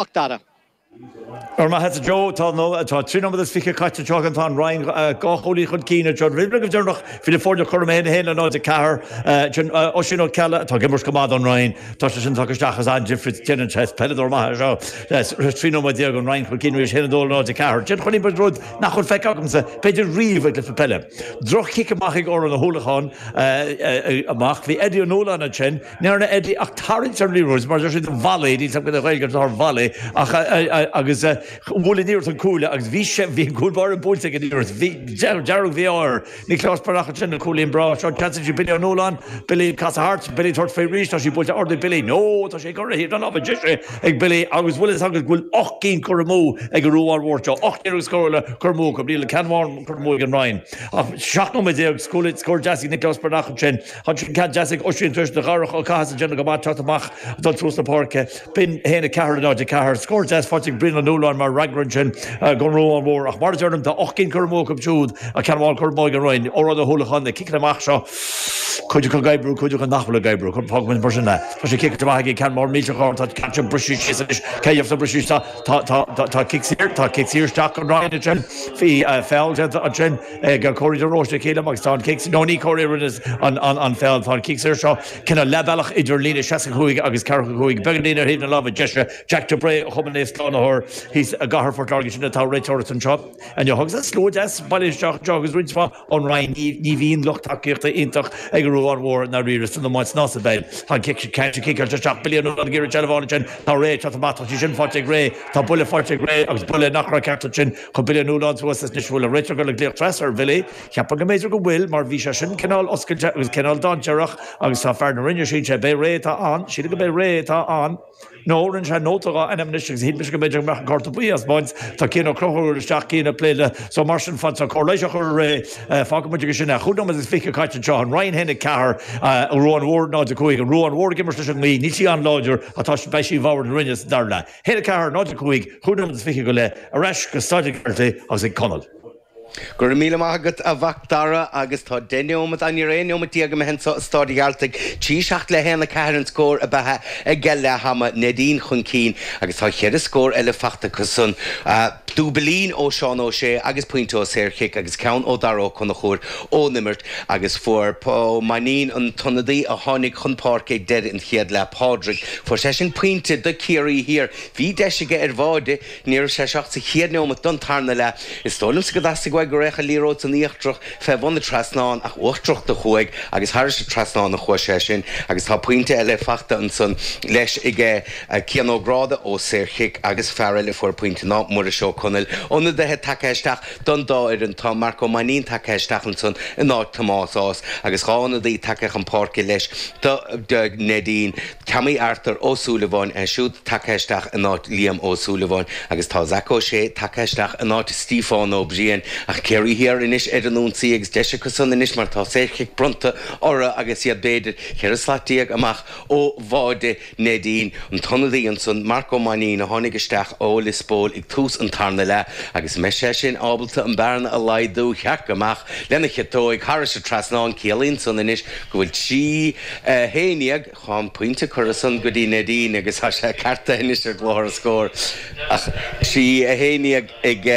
Macdara. Ar mhaithe le Joe, tá na tá trí nóiméad is fiche caite anseo againn. Tá an Rinn dhá chúilín chun cinn ag John Ridley go deireanach, filleadh foirne Chorn Uí Uí 1-4 sin Oisín Ó Ceallaigh atá ag imirt go maith don Rinn. Tá sé sin tagtha isteach is an-difríocht déanann sé. Is peileadóir maith é seo. Trí nóiméad déag an Rinn chun cinn arís 1-4. Déan chun cinn rud nach bhfuil feicthe agamsa b'fhéidir riamh ag cluiche peile. Droch-chic amach ag Odhrán Ó hUallacháin amach. Bhí Eddie Ó Nualláin ansin. Níor fhéadfaí ach tarraingt ar Leroy's mar deir siad an bhallaí, níl cead ag Ghaeilgeoirí dul thar bhallaí ach agus bhuail an iarracht an cuaille agus bhí sé, bhí an cúl báire buailte ag an iarracht, bhí, dearg, bhí áir. Nioclás Breathnach ansin cúilín breá seo, ceansaithe ag Billy Ó Nualláin, Billy ag casadh thart, Billy tabhairt faoi arís, tá sí buailte ard ag Billy, no, tá sí curtha ar thaobh na láimhe deise ag Billy agus bhuel is agaibh go bhfuil ocht gcinn curtha amú ag an Ruadhán Mhór seo, ocht n-iarracht scórála curtha amú acu, níl ach ceann amháin curtha amú ag an Rinn ach seacht nóiméad déag, scór deas ag Nioclás Breathnach ansin. Ansin ceann deas ag Oisín tar éis do Dharach Ó Cathasaigh déanamh go maith teacht amach ag dul suas na páirce. B'in 1 4 i 0 4. Scór deas faighte ag Brian Ó Nualláin mar fhreagra ansin go Ruadhán Mhór ach mar a deirim tá ocht gcinn curtha amú acu siúd is ceann amháin curtha amú ag an Rinn. Odhrán Ó hUallacháin, na ciceanna amach seo, cuid acu ag oibriú, cuid acu nach bhfuil ag oibriú. Fágfaimid mar sin é. Tá sé ciceáilte amach aige ceann mór millteach ard. Tá an ceann sin ag briseadh síos anois. Cé a gheobhas briseadh síos? Tá cic saor, tá cic saor isteach ag an Rinn ansin. Bhí feall déanta ansin. ag Corey de Róiste sílim agus tá an cic. No, ní Corey a rinne an feall, tá an cic saor seo, cineál leathbhealach idir líne 65 agus 45, beagán líne ar thaobh na láimhe deise. Jack de Brae, Chumann Naomh Slánaitheoir, thíos i gcathair Phort Láirge, sin atá ag réiteoireacht anseo inniu. Agus an slua deas ag bailiú isteach anseo agus roinnt mhaith ón Rinn, ní bhíonn lucht tacaíochta iontach ag an Ruadhán Mhór i ndáiríre san iomáint ná sa bpeil. Tá an cic saor ciceáilte isteach bliain ó bhliain ag iarraidh seilbh a fháil ansin, tá Ray ag teacht amach, tá sí sin faighte ag Ray, tá buille faighte ag Ray agus buille nach raibh ceart ansin, Chun Billy Ó Nualláin thuas is níl a fhios an bhfuil an réiteoir le glaoch trasna ar Bhilly, cheapfainn go mb'fhéidir go bhfuil, mar bhí sé sin cineál oscailte agus cineál dainséarach agus tá fear na Rinne, síl sé, b'é Ray atá ann, sílim go b'é Ray atá ann, nó rinne sé nóta dhá ainm anois agus shíl mise go mb'fhéidir go mbeadh an cárta buí á thaispeáint, tá Cian Ó Conchúir isteach, Cian ag plé le, so mar sin fad tá cóir leighis á chur ar Ray, fágfaidh muid aige sin é. Chúig nóiméad is fiche caite anseo, an Rinn 1-4, an Ruadhán Mhór 0-5, an Ruadhán Mhór ag imirt leis an ngaoth, níl sí an-láidir ach tá sí, beidh sí i bhfabhar na Rinne sa dara leath. 1-4, 0-5, 25 go leith, ar ais go Staid a' Ghearaltaigh agus ag Conall. Go raibh míle maith agat a Mhacdara agus tá deich neomat, á níor aon neomat déag imithe anso i Staid a' Ghearaltaigh, trí seacht le haon a ceathair an scór ab ea ag deighil leathama, Neidín chun cinn agus tá cheithre scór eile fachta acu san, dúbailín ó Seán Ó Sé agus pointe ó saorchic agus ceann ó Dara Ó Conchúir ón imirt. Agus fuair P. Ó Mainnín, an t-ionadaí a tháinig chun páirce ag deireadh an chéad leath, Pádraig, fuair seisean pointe do Ciarraí Thiar. Bhí deis aige ar bháide níos túisce sa chéad neomat don tarna leath. Is dóigh liomsa gur theastaigh uaidh go raghadh an liathróid san íochtrach fé bhun an trasnáin ach uachtrach do chuaigh agus thairis an trasnán a chuaigh sé sin agus tá pointe eile faighte ansan leis ag Cian Ó Gráda ó shaorchic agus fear eile a fuair pointe ná Muiris Ó Conaill. Ionadaithe tagaithe isteach. Don dá fhoireann, tá Marc Ó Mainnín tagtha isteach ansan in áit Tomás Ághas agus dhá ionadaí tagtha chun páirce leis do Neidín. Tommy Arthur Ó Súilleabháin é siúd tagtha isteach in áit Liam Ó Súilleabháin agus tá Zac Ó Sé tagtha isteach in áit Stíofán Ó Briain. Ach Ciarraí Thiar anois ar an ionsaí agus deis acusan anois mar tá saorchic bronnta orthu agus iad b'fhéidir ceithre slat déag amach ó bháide. Neidín, an t-ionadaí ansan, Marc Ó Mainnín, a tháinig isteach ó Liospóil ag tús an tarna leath agus an mbeidh sé sin ábalta an bearna a laghdú tharraic amach lena chiotóig thairis an trasnán. Ciallaíonn san anois go bhfuil trí haon dhéag chun pointe curtha ansan go dtí Neidín agus tá sé ceartaithe anois ar chlár na scór ach trí haon dhéag ag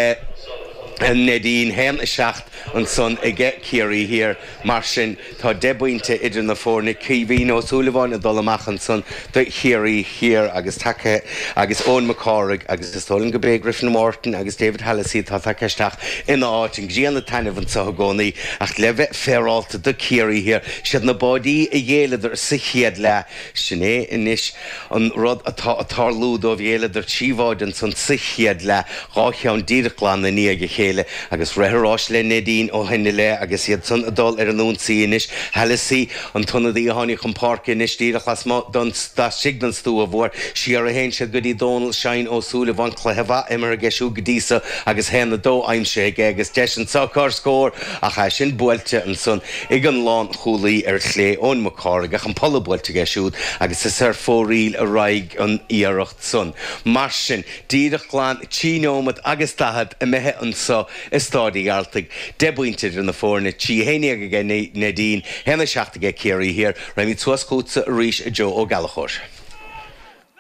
Neidín, haon a seacht ansan ag Ciarraí Thiar. Mar sin. Tá deich bpointe idir na foirne, Caoimhín Ó Súilleabháin ag dul amach ansan do Chiarraí Thiar agus tagaithe agus Eoin Mac Cárthaigh agus is dóigh liom gurb é Griffin Martin agus David Hallisey atá tagtha isteach ina áit. An grian ag taitneamh anseo i gcónaí ach le bheith féaráilte do Ciarraí Thiar, is iad na báidí a ghéilleadar sa chéad leath. Sin é anois an rud atá a' tarlú dóibh, ghéilleadar trí bháid insa chéad leath, dhá cheann díreach glan i ndiaidh a chéile, agus rith an rás le Neidín ó shoin i leith, agus iadsan a' dul ar an ionsaí anois. Hallissey an t-ionadaí a tháinig chun páirce anois, díreach lasmuigh don, laistigh don stua mhóir, siar a théann siad go dtí Dónal Sheáin Ó Súilleabháin, cluiche mhaith imeartha aige siúd go dtí so, agus haon a dó aimsithe aige, agus deis anso ar scór, Ach é sin buailte ansan ag an lánchúlaí ar chlé, Eoin Mac Cárthaigh, ach an polla buailte aige siúd agus is ar fóraoil a raghaidh an iarracht san. Mar sin, díreach glan trí neomat agus daichead imithe anso i Stáid Uí Ghearltaigh, deich bpointe idir na foirne, trí a haon déag aige Neidín, haon a seacht aige Ciarraí Thiar, raghaimid suas chútsa arís, a Joe Ó Gallachóir.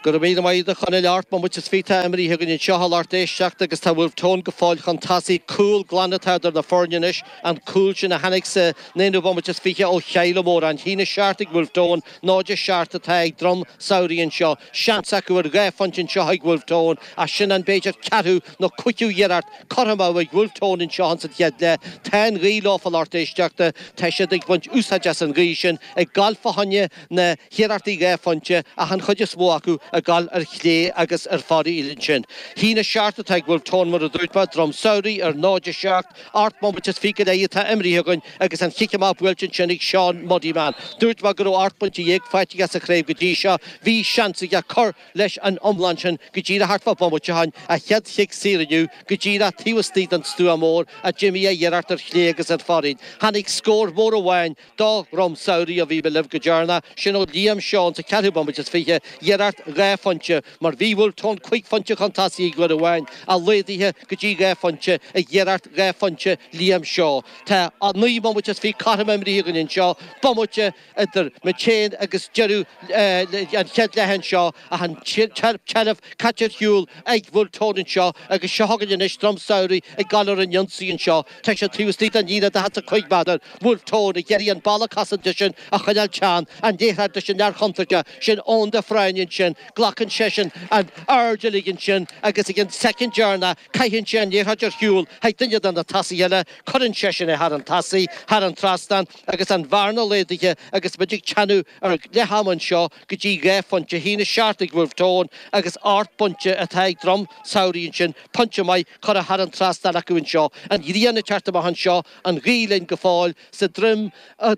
Go raibh míle maith agat a Chonaill ocht mbomaite is fiche atá imrithe againn anseo a lucht éisteachta agus tá Wolfe Tone go fóill chun tosaigh. Cúl glan atá idir na foirne anois, an cúl sin a tháinig sa naoú bomaite is fiche ó Sheila Móra. A haon a seacht ag Wolfe Tone, 0-7 atá ag Droim Shamhraidh anseo. Seans acu ar dhá phointe anseo ag Wolfe Tone ach sin an, b'fhéidir, ceathrú nó cúigiú iarracht curtha amú ag Wolfe Tone anseo insan chéad leath. Tá an ghaoth leofa a lucht éisteachta. Tá siad ag baint úsáid as an ghaoth sin ag gabháil fá choinne. na hiarrachtaí dhá phointe ach an chuid is mó acu ag dul ar chlé agus ar fóraoil ansin. A haon a seacht atá ag Wolfe Tone, mar a dúirt mé, Droim Samhraidh ar 0 7, ocht mbomaite is fiche go leith atá imrithe againn agus an chic amach buailte ansin ag Seán Muddiman. Dúirt mé go raibh ocht bpointe dhéag faighte aige sa chraobh go dtí seo, bhí seans aige cur leis an iomlán sin go díreach thart fá bhomaite ó shin, a chéad chic saor inniu go díreach taobh istigh den stua mór ach d'imigh a iarracht ar chlé agus ar fóraoil. Tháinig scór mór amháin. Do Dhroim Samhraidh a bhí mé libh go dtearna sin ó Liam Shaw sa cheathrú bomaite is fiche iarracht dhá phointe mar bhí Wolfe Tone cúig phointe chun tosaigh ag uair amháin a laghdaithe go dtí dhá phointe ag iarracht dhá phointe Liam Shaw tá a naoi mbomaite is fiche cothrom imrithe againn anseo bomaite idir muid féin agus deireadh an chéad leath anseo ach an tseilbh caite ar shiúl ag Wolfe Tone anseo agus seo chugainn anois Droim Samhraidh ag dul ar an ionsaí anseo. Tá siad taobh istigh den líne 45 méadar Wolfe Tone ag iarraidh an balla cosanta sin a choinneáil teann an liathróid leis an fhear chontúirteach sin Eoin de Fréine ansin glacann seisean an aird uilig ansin agus ag an soicind dheireanach caitheann sé an liathróid ar shiúl chuig duine de na tosaithe eile cuireann seisean í thar an tosaí thar an trasnán agus an bhearna laghdaithe agus muid ag teannadh ar leath ama anseo go dtí dhá phointe a haon a seacht ag Wolfe Tone agus ocht bpointe atá ag Droim Samhraidh ansin, pointe maith curtha thar an trasnán acu anseo, an ghrian ag teacht amach anseo, an ghaoth linn go fóill sa droim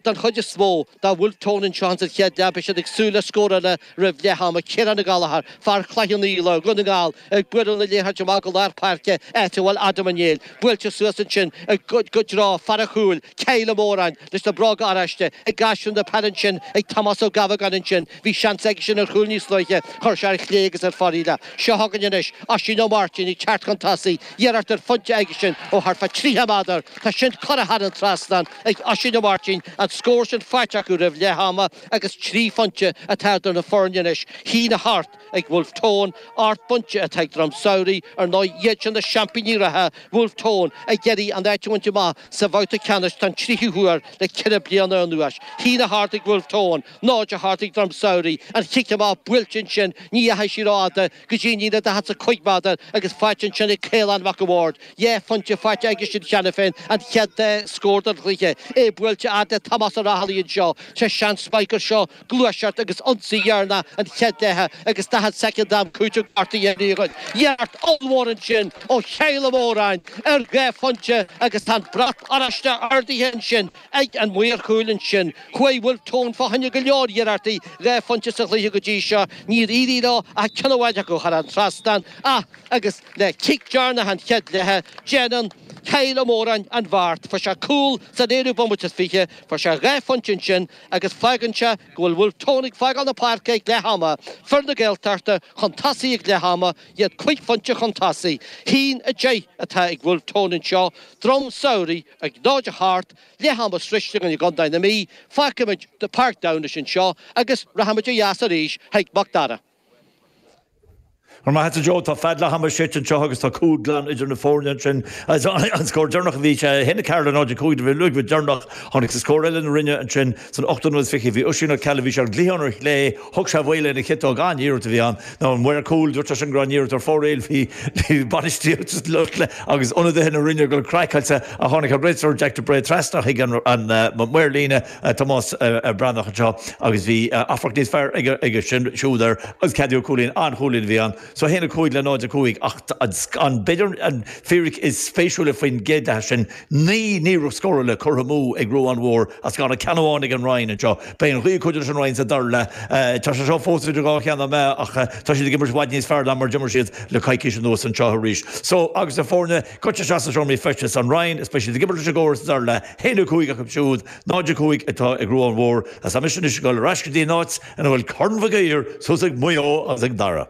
don chuid is mhó do Wolfe Tone anseo ins an chéad leath beidh siad ag súil le scór eile roimh leath ama, Ciarán Ó Gallchóir, fear Chloich Cheann Fhaola, Dhún na nGall, ag bualadh na liathróide amach go lár páirce áit a bhfuil Adam Ó Néill buailte suas ansin go dtí fear an chúil, Kyle Ó Móráin, leis na bróga oráiste ag caitheamh na peile ansin ag Tomás Ó Gabhagáin ansin, bhí seans aigesean ar chúl níos luaithe, chuir sé ar chlé agus ar fóraoil. Seo chugainn anois Oisín Ó Máirtín ag teacht chun tosaigh, iarracht ar phointe aigesean ó thart fá 30 méadar, tá sin curtha thar an trasnán ag Oisín Ó Máirtín, an scór sin faighte acu roimh leath ama agus trí phointe atá idir na foirne anois, a haon a hocht. Ag Wolfe Tone, ocht bpointe atá ag Droim Samhraidh, ar ndóigh, iad sin na seaimpíní reatha, Wolfe Tone ag iarraidh a n-áit a bhaint amach sa bhabhta ceannais don tríú huair le ceithre bliana anuas. A haon a hocht ag Wolfe Tone, 0 a hocht ag Droim Samhraidh, an chic amach buailte ansin, ní dheachaigh sí rófhada, go dtí an líne daichead is a cúig méadar agus faighte ansin ag Caolán Mac an Bhaird. Dhá phointe faighte aigesean cheana féin, an chéad dá scór den chluiche, é buailte fhad le Tomás Ó Raghallaigh anseo, tá seans beag gur seo, gluaiseacht agus ionsaí deireanach an chéad leithe agus 40 soicind am cúitimh curtha dínn againn. Iarracht ollmhór ansin ó Kyle Ó Móráin ar dhá phointe agus tá an brat oráiste ardaithe ansin ag an maor chúil ansin. Chuaigh Wolfe Tone fá choinne go leor iarrachtaí dhá phointe sa chluiche go dtí seo, níor éirigh leo ach ceann amháin acu thar an trasnán ach agus le cic dheireanach an chéad leithe déanann Kyle Ó Móráin an bheart. Fuair sé cúl san aonú bomaite is fiche, fuair sé dhá phointe ansin. agus fágann sé go bhfuil Wolfe Tone ag fágáil na páirce ag leath ama, fir na Gaeltachta chun tosaigh ag leath ama, iad cúig phointe chun tosaigh. Haon a deich atá ag Wolfe Tone anseo, droim samhraidh ag 0 a hocht, leath ama sroichte againn i gcontae na Mí, fágfaimid Páirc Tailteann anseo agus rachaimid ó dheas arís chuig Mac Dara. Go raibh maith agat a Joe, tá feadóg leath-ama séidte anseo agus tá cúl glan idir na foirne ansin. An scór deireanach a bhí, sé a haon ag Carlow, 0-5 do Bhéal Nuadhairt deireanach. Tháinig sa scór eile na Rinne ansin san ochtú nóiméad is fiche. Bhí Oisín Ó Ceallaigh, bhí sé ar an gcliathán ar chlé, thug sé faoi lena chiotóg, an-iarracht a bhí ann. Now an maor cúil, dúirt sé sin go raibh an iarracht ar fóraoil. Bhí bainistíocht agus ionadaithe na Rinne ag dul craiceáilte ach tháinig an réiteoir Jack de Brae trasna chuig an maor líne, Tomás Breathnach anseo agus bhí amharc níos fearr aige sin siúd air agus ceadaíodh cúilín, an-chúilín a bhí ann. So 1, 5 le 0, 5 ach an, b'fhéidir an fíric is spéisiúla faoin gcéad leath sin, naoi n-iarracht scórála curtha amú ag Ruadhán Mhór is gan ach ceann amháin ag an Rinn anseo. Beidh an ghaoth ag cuidiú leis an Rinn sa dara leath. Tá sé seo fós idir dhá cheann na meá ach tá siad ag imirt i bhfad níos fearr ná mar d'imir siad le coicís anuas anseo arís. So agus na foirne Cuirtear isteach sna seomraí feistis is an Rinn is Speisialta Gibirlise i gcóras dar le haon a cúig acu siúd, 0-5, atá ag Ruán Mhór agus tá mise anois ag dul ar ais go dtí an áit ina bhfuil Corn Mhig Uidhir thuas ag Maigh Eo agus ag Dara.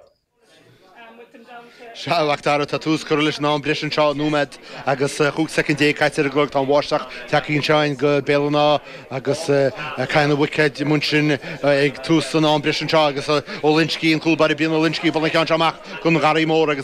Sea, a Mhacdara, tá tús curtha leis an am breise anseo, nóiméad agus chúig soicind déag caite ar an gclog, tá an bháisteach tagtha chugainn go Béal an Átha agus caitheann an bhuicéad mun sinn ag tús an am breise anseo agus Ó Loinsgí, an cúl báire, Brian Ó Loinsgí, ag dul an ceann seo amach don Gharraí Mór agus